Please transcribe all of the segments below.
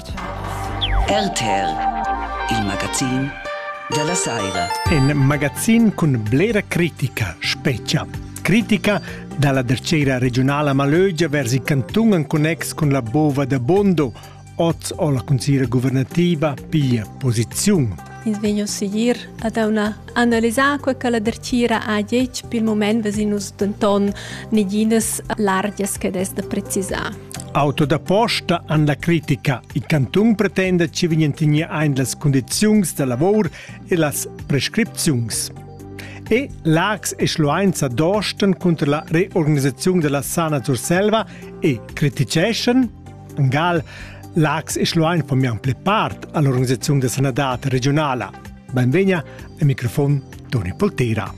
RTL, il magazin della Saira. Un magazin con blera critica, specia. Critica dalla dercera regionala Malögia vers il canton en connex con la bova da Bondo. Oz ho la consigliera governativa piglia posiziun. Ins vegno seguir ad una analisar quel che la dercira ha detto per il moment vesin nus denton neginas largias che des da precisar. Auto da posta han la critica. Il cantun pretenda che vegnan tegnir ein las condiziuns da lavor e las prescripziuns. E Lax e Schlueinza dosten cunter la reorganisazione della Sana Surselva e criticeschan Gal Lax e Schluein formian ple part all'organizzazione da sanadad regionala. Benvegna al microfon Toni Poltera.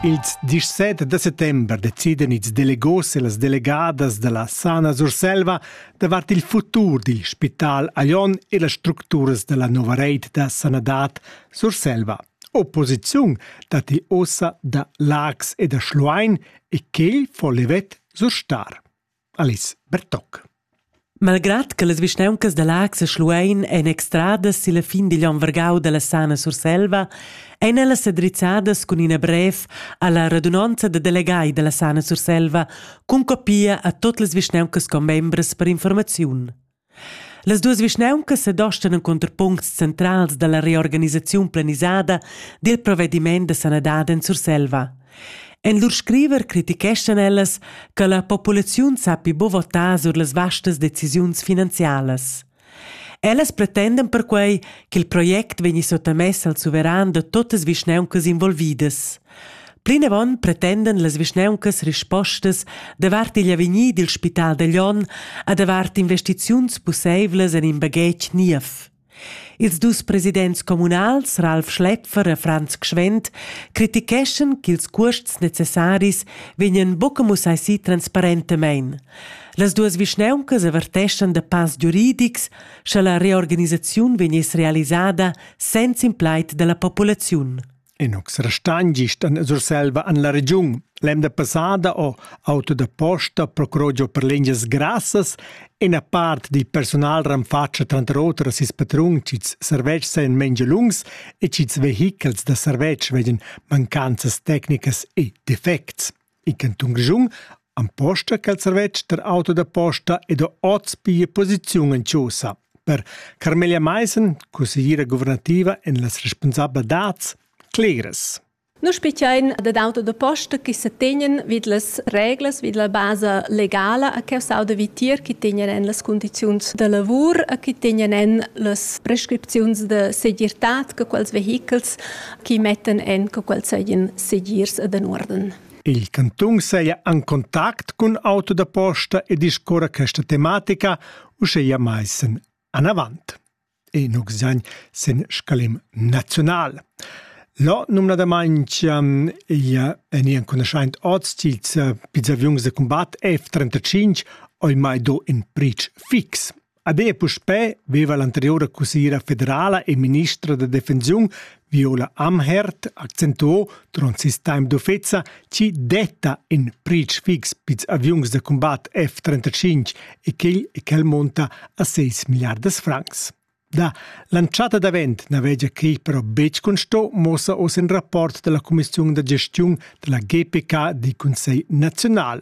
Ils 17 da settember deciden ils delegos e las delegadas della Sana Surselva davart il futur dil spital Aion e las structuras della nova reit da sanadad Surselva. Opposiziun datti ossa da Lax e da Schluein e quel fo levet surstar. Alice Bertoc. Malgrad che las vischnauncas da Laax e Schluein ein extradas silla fin digl onn vargau dalla Sana Surselva, ein ellas sedrizzadas cun ina brev alla radunonza da delegai dalla Sana Surselva cun copia a tot las vischnauncas commembras per informaziun. Las duas vischnauncas sedostan encunter puncts centrals dalla reorganisaziun planisada dil provvediment da sanadad en Surselva. En lur scriver criticheschan ellas che la populaziun sappi buca votar sur las vastas decisiuns finanzialas. Ellas pretendan perquei ch'il project vegni sottamess al suveran da totas vischnauncas involvidas. Plinavon pretendan las vischnauncas rispostas davart igl avegnir dil spital da Glion e davart investiziuns pusseivlas en in baghetg niev. Ils dus presidents communals Ralf Schläpfer e Franz Gschwend criticheschan ch'ils cuosts necessaris vegnan buca mussai si transparentemein. Las duas vischnauncas averteschan da pass giuridics, sche la reorganisaziun vegniss realisada senza in plaid dalla populaziun. Inox restagn gist en Surselva en la regiun. L'emda passada ho auto da posta procurò giò per lingias grassas e una part di personal renfatscha tranter oter a sis patrun ch'ils servetschs seien mengia lungs e ch'ils vehichels da servetsch vegien mancanzas tecnicas e defects. In cantun Grischun emposta quel servetsch tar auto da posta ed ha oz pia posiziun en chaussa. Per Carmelia Maissen, consigliera guvernativa en las responsabla dads, clegres. Nus spettain dad auto da posta che se tegnen vid las reglas, vid la basa legala a che auto vitier che tegnen en las condizions da lavur, a che tegnen en las prescripzions de segirtad che quels vehichels chi mettan en co quels seien segirs ed en uorden. Il cantun seia en contact cun auto da posta e discorra questa tematica uscheia maissen anavant. E nuxagn sen scalim naziunal. Lo numnadamaintg ia en ian cunoschaint oz til pizzaviungs de combat F-35 oi mai do in prich fix. Ader puspè veva l'anteriura cussiera federala e ministra da defensiun Viola Amherd accentuò durant ses temps d'offesa chi detta in pretsch fix pils aviuns da combat F-35 e quel e quel monta a 6 milliardas francs. Da l'antschatta davent navegia quei però betg consto, mossa oz in rapport della Commissiun da gestiun della GPK di Consell Naziunal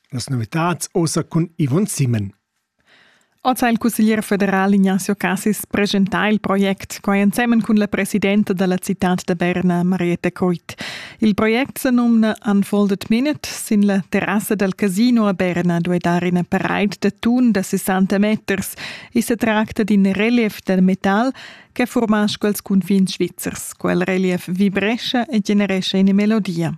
las novitads ossa cun Yvonne Simon. Oz ha il cusseglier federal Ignazio Cassis presentà il project, quai ensemen cun la presidenta da la citad da Berna, Marietta Coit. Il project sa numna Unfolded Minute. Sin la terrassa dal casino a Berna duai dar ina paraid da tun da 60 meters. I sa tracta d'in relief da metal che furmascha ils cunfins svizzers. Quel relief vibrescha e generescha ina melodia.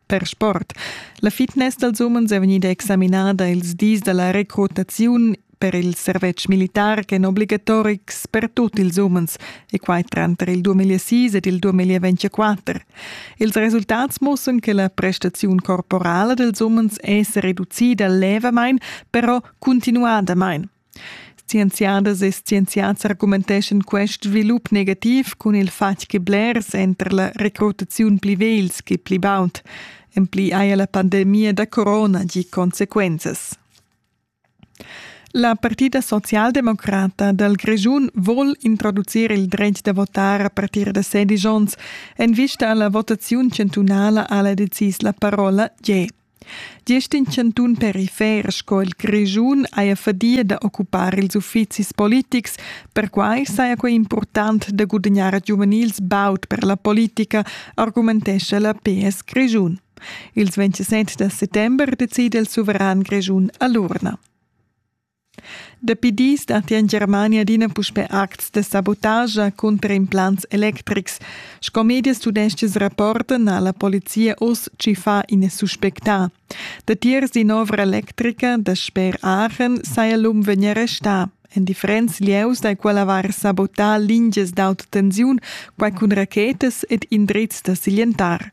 per sport. La fitness dals umens è vegnida examinada ils dis da la recrutaziun per il servetsch militar ch'è obligatorics per tut ils umens, e quai tranter il 2006 ed il 2024. Ils resultats mussan che la prestaziun corporala dels umens è reducida levamain, però continuadamain. Scienziadas e scienziads argumenteschan quest svilup negativ cun il fatg che blers èn tar la recrutaziun pli vegls che pli baud. En pli haja la pandemia da corona gì consequenzas. La partida socialdemocrata dal Grischun vul introducir il dretg da votar a partir da 16 onns. En vista alla votaziun chantunala ha la decis la parola G. Gest in chantun perifer sco il Grischun haja fadia da occupar ils uffizis politics. Perquai saja quai impurtant da gudagnar giuvenils baud per la politica, argumentescha la PS Grischun. Ils 27 da settember decida il suveran grischun a l'urna. Dapi dis datti en Germania adina puspè acts da sabotascha cunter implants electrics. Sco medias tudestgas rapportan ha la polizia oz tschiffà ina suspectà. Datiers d'in'ovra electrica da sper Aachen saja l'um vegnì arrestà. En differents lieus da quella var sabotà lingias d'autotensiun, quai cun rachetas ed indrizs da siglientar.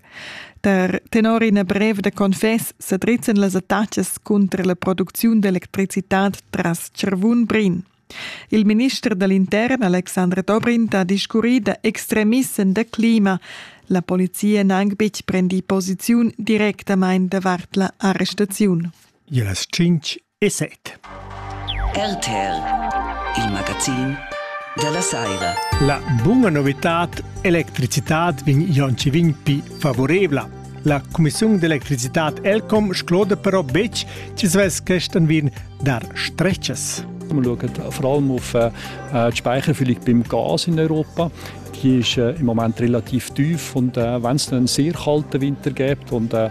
Tar tenor ina brev da confess sedrizzan las attachas cunter la producziun d'electricitad tras Charvun-Brin. Il minister dall'intern Alexandre Dobrindt ha discurri da extremissen da clima. La polizia n'ha anc betg prendì posiziun directamain davart la arrestaziun. Las tschintg e set. RTL, il magazin della saira. La buona novità electricità vin Jonci vin pi favorevla. La Commissione d'elettricità Elcom scloda però bec ci svess questan vin dar stretches. Wir schauen vor allem auf äh, die Speicherfüllung beim Gas in Europa. Die ist äh, im Moment relativ tief und äh, wenn es einen sehr kalten Winter gibt und äh,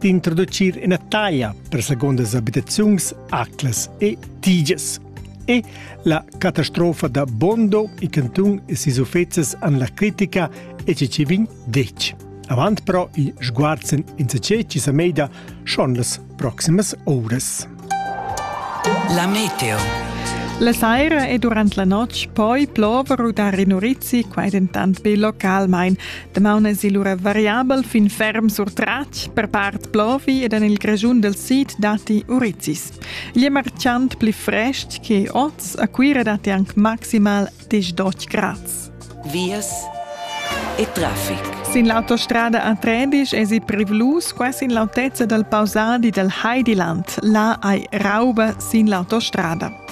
d'introducir ina taglia per segundas abitaziuns, aclas e tiges. E la catastrofa da Bondo i cantun e sis uffezzes an la critica e ci vin dec. Avant però i sguarzen in se ce ci sa meida schon las proximas ores. La meteo. La saira e durant la notg poi plover u dar in urizi, quai dentant be localmain. Damaun èsi lura variabel fin ferm sur tratg, per part plovi ed en il Grischun del Sid datti urizis. Igl è marciant pli frestg che oz, a Cuira datti anc maximal Dich Deutsch Graz. Vias e traffic. Sin l'autostrada a Trebisch esi privlus quasi in l'autezza dal pausadi dal Heidiland. Là hai rauba sin l'autostrada.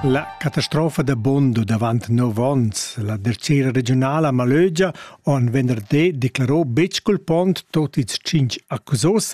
La catastrofa da Bondo davant nov onns, la tercera regionala a Malögia, on venerdì declarò betg culpont tot ils cinc accusos,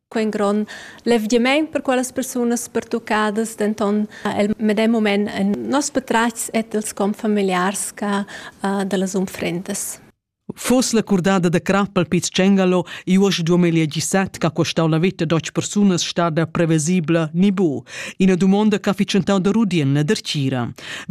Quei grond levgiament per quellas persunas pertuccadas, denton el medem moment en nos patratgs et els confamiliars ca dallas unfrendas. Fos la curdada da crap al Piz Cengalo i uost 2017 ch'ha costau la veta d'auts persunas stada prevesibla ni bu. Ina dumonda ch'ha fitschentau da rudien la dertgira.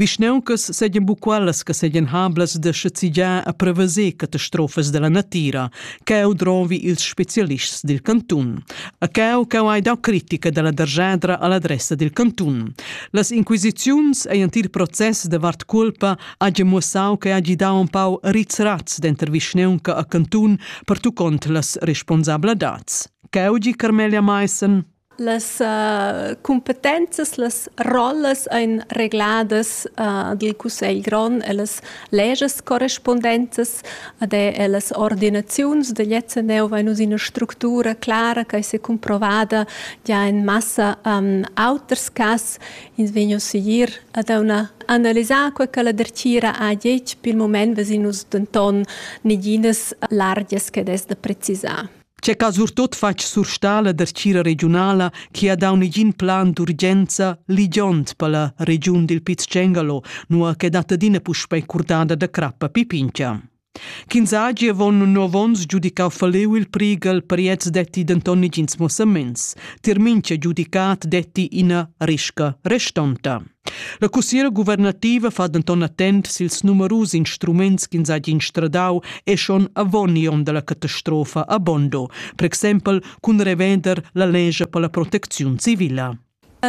Vischneuncas segan bu quellas che segan hablas da schezzigiar a preveser catastrofas dalla natira, Cheu drovi ils specialists dil cantun. A cheu cheu hai dau critica dalla derschadra all'adressa dil cantun. Las inquisiziuns ein ent il process davart culpa hagi muossau che hagi dau empau rizraz denter vischneunca a cantun pertuccont las responsabladats. Cheu gi Carmelia Maissen. Las uh, cumpetenzas, las rollas ein regladas uh, dil cussegl grond e las legas correspondenzas ad e las ordinaziuns degl ECNEU vein us ina structura clara che secumprovada gia en massa um, auters cass. Ins vegn us segir ad una analisar quei che la dertgira ha detg, pil moment vesin us denton neginas largias che des da precisar. Che ca surtot fatg surstà la dertgira regiunala chi ha dau negin plan d'urgenza ligiond per la regiun dil Piz Cengalo, nua che dat adina puspei curdada da crappa pipincha. Ch'ins hagi avon nov onns giudicau faleu il prigal per gliez detti denton negins mossaments. Tier mincha giudicat detti ina risca restonta. La cussiera guvernativa fa denton attent sils numerus instruments ch'ins hagi instradau e schon avon igl onn dalla catastrofa a Bondo, per exempel cun revender la lescha per la protecziun civila.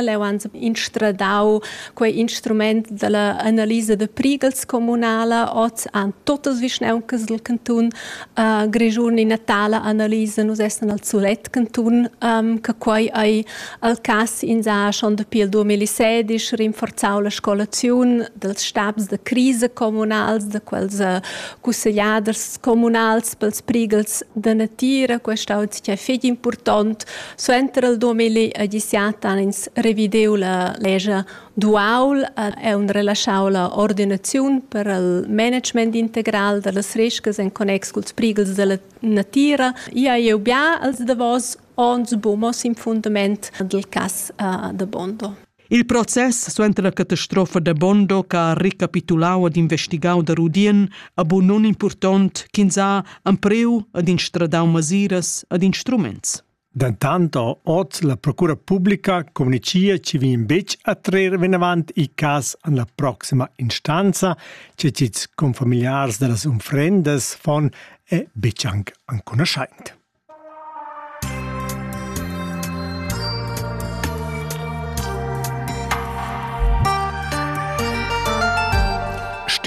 Leu han instradau quei instrument dalla analisa da prigels communala. Oz han totas vischnauncas dil cantun uh, Grischun ina tala analisa. Nus essan al sulet cantun um, che quei ei Al cass ins ha schon dapi il 2016 rinforzau la scolaziun dels stabs da crisa communals, da quels eh, cussegliaders communals pels prigels da natira, questa ho sia feg important. Suenter il 2017 han ins revideu la legia duaul e un relasciau la ordinaziun per il management integral da las rescas en connex culs prigels della natira. Ia eu bia als davos Ons bumos in fundament dal cas uh, da Bondo. Il process suenter la catastrofa da Bondo che ha recapitulau ad investigau da Rudien a bu non impurtont ch'ins ha ampreu ad instradau masiras ad instruments. Dentant oz la procura pubblica communicia che vien betg a trer venavant i cas an la proxima instanza, che cits confamiliars da las unfrendas fon e betg anc anconoschaint.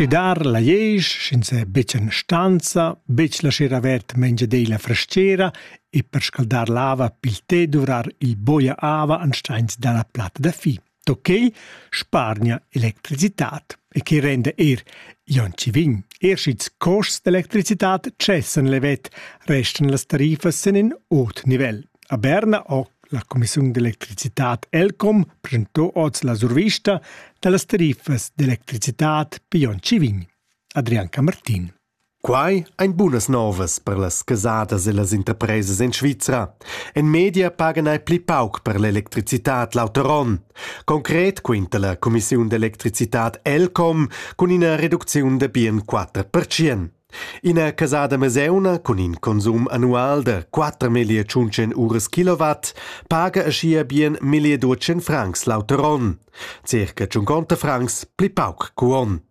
Stidar la iesch, sch'ins è betg en stanza, betg laschar avert mengiadei la frastgera e per scaldar l'ava pil té duvrar il boia ava ansteins dalla platta da fi. Da quei spargna electricitad e che renda er Janci vin. Er sch'ils costs d'electricitad cessan levet, restan las tarifas en in ot nivel. A Berna ho la Commissiun d'electricitad Elcom presentò oz la survista da las tarifas d'electricitad per Janci vin. Adrian Camartin. Quai ein bunas novas per las casadas e las interpresas en Svizra. En media pagan ei pli pauc per l'electricitad l'auter onn. Concret quinta la cumissiun d'electricitad Elcom cun ina reducziun da bien 4%. Ina casada meseuna cun in consum annual da 4.100 uras kilowatt paga aschia bien 1.200 francs l'auter onn, circa 50 francs pli pauc cu onn.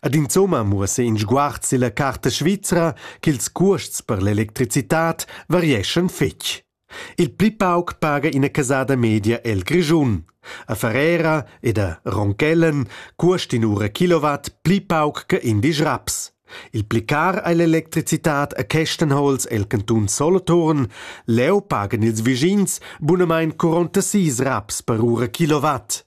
Ed insomma muossa in sguard silla carta svizra ch'ils cuosts per l'electricitad varieschan fetg. Il pli pauc paga ina casada media el Grischun. A Ferrera ed a Ronchellen cuost inura kilowatt pli pauc che indisch raps. Il pli car ei l'electricitad a Kestenholz el cantun Soloturn, leu pagan ils vischins bunamain 46 raps per ura kilowatt.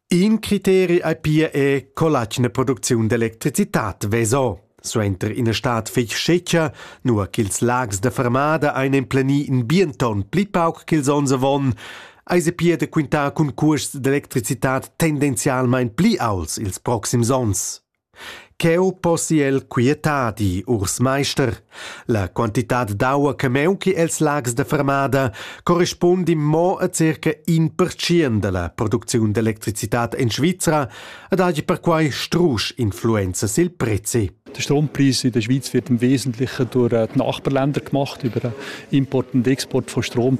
In criteri ei pia è co l'atgna producziun d'electricitat veso. Suenter ina stad fetg scetga, nua ch'ils lags da fermada ein emplenì in bien ton pli pauc ch'ils onns avon, eis e pia da quintar cun cuosts d'electricitat tendenzialmein pli aults ils proxims onns. Cheu possi el quietadi, urs meister. La quantitad d'aua che meunchi els lags da fermada corrispundi mo a circa in pertschien dalla producziun d'electricitad en Svizra ed hagi perquai strusch influenza sil prezi. Der Strompreis in der Schweiz wird im Wesentlichen durch die Nachbarländer gemacht, über den Import und Export von Strom.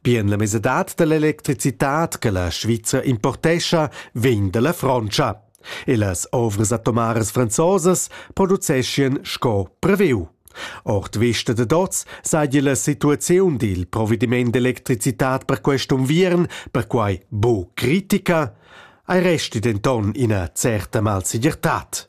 Bien la mesadad dall'electricitad che la Svizra importescha vegn dalla Frontscha e las ovras atomaras franzosas produceschien sco previu. Ord vista da oz seigi la situaziun dil provediment d'electricitad per quest unviern perquai buc critica, ei resti denton ina certa malsegirtad.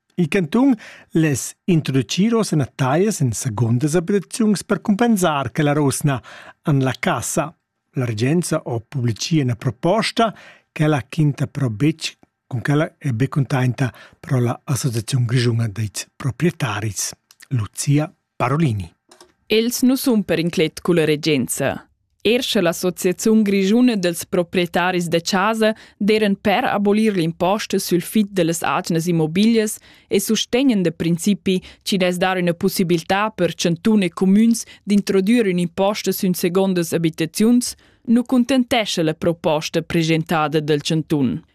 Il cantun less introducir oz ina taglias en segundas abitaziuns per cumpensar che la rusna en la cassa. La regenza ha publicì ina proposta ch'ella quinta però betg cun quella è be contenta però la Associaziun grischuna dei proprietaris, Lucia Parolini. Els nu sun per inclet culla regenza. Er sche l'Associaziun grischuna dels proprietaris de casa deren per abolir l'imposte sul fit dellas atgnas immobilias e sostegnen de principi ci des dar una possibilità per cantun e comüns d'introdurre un imposte sün segondas abitaziuns, nu contentesce la proposta presentada del cantun.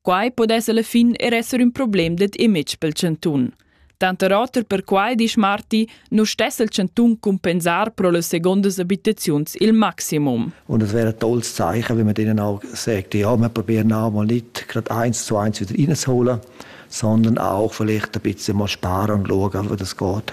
Quai pudess alla fin er esser ün problem dad image pel chantun. Tanter oter perquai disch Marti, nu stess il chantun cumpensar pro las segondas abitaziuns il maximum. Und es wäre ein tolles Zeichen, wenn man denen auch sagt, ja, wir probieren auch mal nicht gerade eins zu eins wieder reinzuholen, sondern auch vielleicht ein bisschen mal sparen und schauen, wie das geht.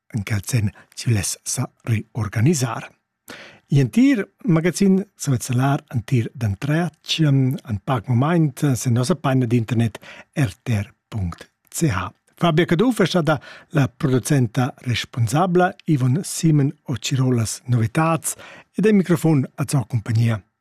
en quel sen chi less sa reorganisar. In entir magazin svezzelar entir d'entretschem en pac moment sen nossa paina d'internet rtr.ch. Fabia Caduff è stata la producenta responsabla Ivon Simen o Cirolas novitats ed il microfon a sua compagnia